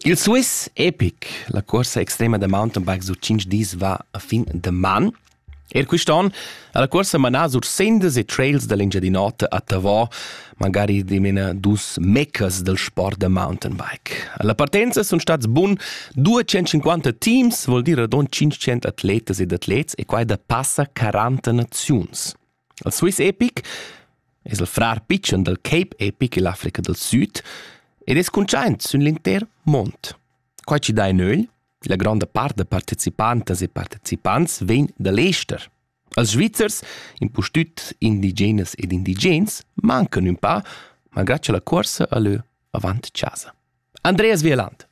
Il Swiss Epic, la corsa extrema da mountainbikes da 5 dis va a fin da man. Er quist'on ha la corsa manà sur sendas e trails da l'Engiadin'Ota a Tavò, magari dimena dus mecas del sport da mountainbike. Alla partenza sun stats bun 250 teams, vuol dir radon 500 atletas ed atlets e quai da passa 40 naziuns. El Swiss Epic es il frar pitschen dal Cape Epic ill'Africa dal Süd ed es cuntschaint sün l'intер mond. Quai chi dà in ögl, la gronda part da partecipantas e partecipants vegn da l'ester. Els Svizzers, impustüt indigenas ed indigens, mancan ün pa, malgrà cha la cuorsa al lö avant chasa. Andreas Wieland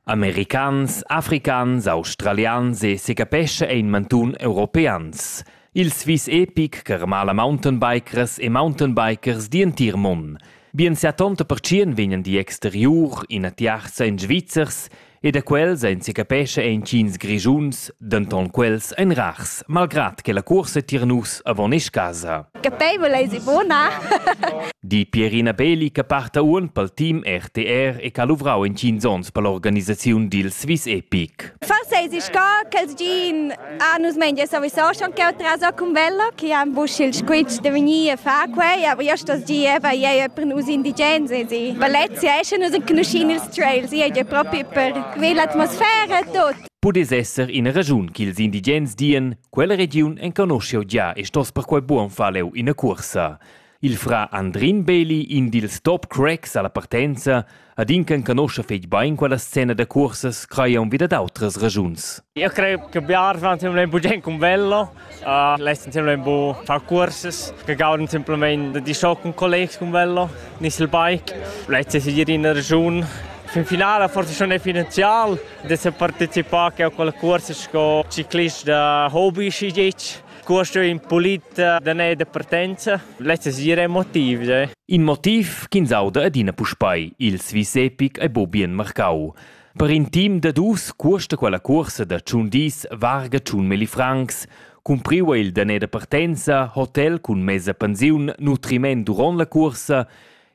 Americans, africans, australians e secapescha ein mantun europeans. Il svis epic che remala mountainbikers e mountainbikers d'in tier mun. Bien sia tonta pertschien vegnan di exteriur, ina tiarza en Svizzers e da quels ein secapescha entgins grischuns, denton quels ein rars, malgrat che la cuorsa tier nus avon esch casa. Capeivel eis ivona. Di Pierina Belli che parta uon pel team RTR e che ha luvrau in 5 onns per l'organisaziun dil Swiss Epic. Forse eis sco che gin a nus mengia sowieso schon che otra con velo che han busch il squitsch de venir a far quei, aber io sto gi eva ei per nus indigens e Valencia esce nus conoscin ils trails, ei è proprio per quella atmosfera e tot. Pudess esser ina ragiun ch'ils indigens dien Quella regiun enconoscha gia e stos perquai buon far leu ina cuorsa. Il fra Andrin Beli, in dils top cracks alla partenza, ad in che conosce fetg bein quella scena da cursas crai aunc vida d'autras ragiuns. Io credo che biar fa semplicemente bugen un con bello. Uh, Lei semplicemente bu far cursas, che gauden semplicemente di so con collegs con bello, nis il bike. Lei si in una region fin finale forse schon è finanzial, da se participar a quel cuors sco ciclist da hobby si dic. Questo è in pulit da ne da partenza. Lezza sira è motiv. Eh. In motiv ch'ins auda adina puspei il Swiss Epic e Bobien Marcau. Per in team da dus cuosta quella cursa da tschun dis varga tschun meli francs. Cumpriva il dané da partenza, hotel cun mesa pensiun, nutriment duront la cursa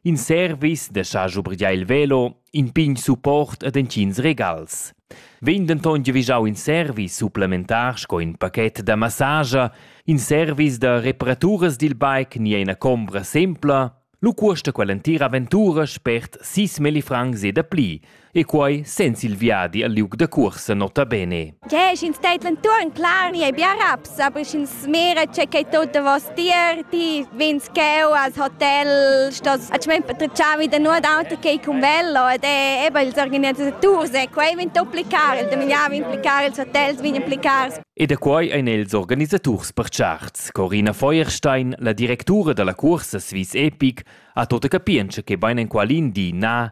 In service da sa schubrigliar il velo, in pign support ed entgins regals. Vegn denton giavischau in service supplementar sco in pachet da massage, in service da reparaturas dil bike ni ina combra sempla, lu cuosta quell'entira aventura spert sis meli francs e da pli, e quei senza il viadi al liug da cuorsa nota bene. Ja, sch'ins teit l'entuorn clar, ni ei bia raps, aber sch'ins mira che che tutto was dir, ti vins cheu als hotel, stos a cement patrucciavi da nuot auto che con velo ed è eben ils organizzators e quei vin duplicar, il domignava implicar ils hotels vin implicar. E da quei ein els organisaturs percharts. Corina Feuerstein, la directura dalla cuorsa Swiss Epic, ha tota capientscha che bein en qualin di na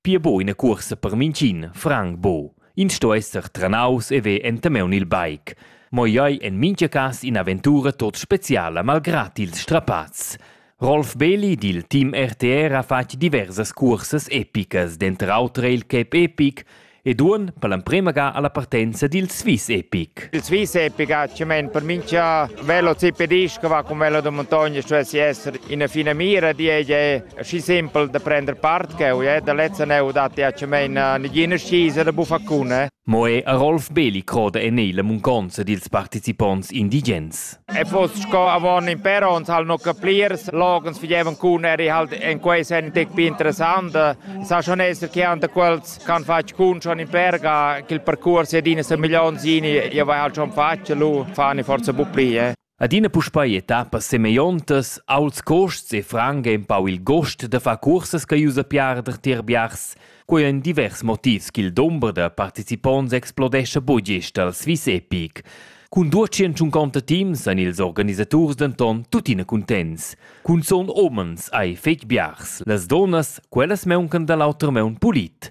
Pia buca ina cuorsa per mintgin, franc bu. Ins sto esser tranaus e ver entameun il bike. Mo ei ei en mintga cas in'aventura tot speciala malgrat ils strapazs. Rolf Beli dil team RTR ha fatg diversas cursas epicas, denter auter il Cape Epic ed uon per l'emprema ga alla partenza dil Swiss Epic. Il Swiss Epic ha cement per mincha velo zipedist che va cun velo da montagna stuessi esser ina fina mira, di ei schi simpel da prender part ch'eu è da lezza neu dat diacemein a negina scisa da buffaccuna. Mo è a Rolf Beli croda en ei la munconza dils participonts indigens. E foss sco avon in per ons hal no capliers, logens figevan cun eri halt en quei sen tec più interessante. Sa schon esser che ante quels can fatg cun schon in perga che il percorso edina sa milion zini ja vai halt schon faccia lu fani forza bu pli eh. Adina puspei etappas semegliontas, aults cuosts e franc ei empau il gust da far cursas che ius a piarder tier biars. Quei ein divers motivs ch'il dumber da participonts explodescha bugisch dal Swiss Epic. Cun duatschintschun conta teams ein ils organisaturs denton tuttina cuntents. Cunzun homens ei fetg biars. Las dunnas, quellas meuncan dall'auter meun pulit.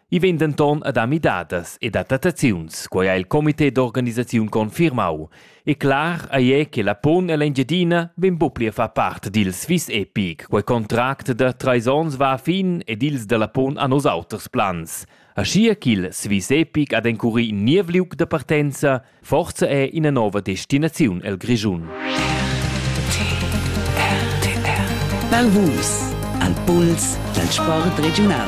I vegn denton a dar midadas ed adattaziuns, quei ha il comité d'organisaziun confirmau. E clar ei è che la pon ell'Engiadina vegn buc pli a far part dil Swiss Epic. Quei contract da treis onns va a fin ed ils dalla pon han oz auters plans. Aschia ch'il Swiss Epic ha d'encurir in niev liug da partenza, forza è ina nova destinaziun el Grischun. Val Vus, al puls dal sport regiunal.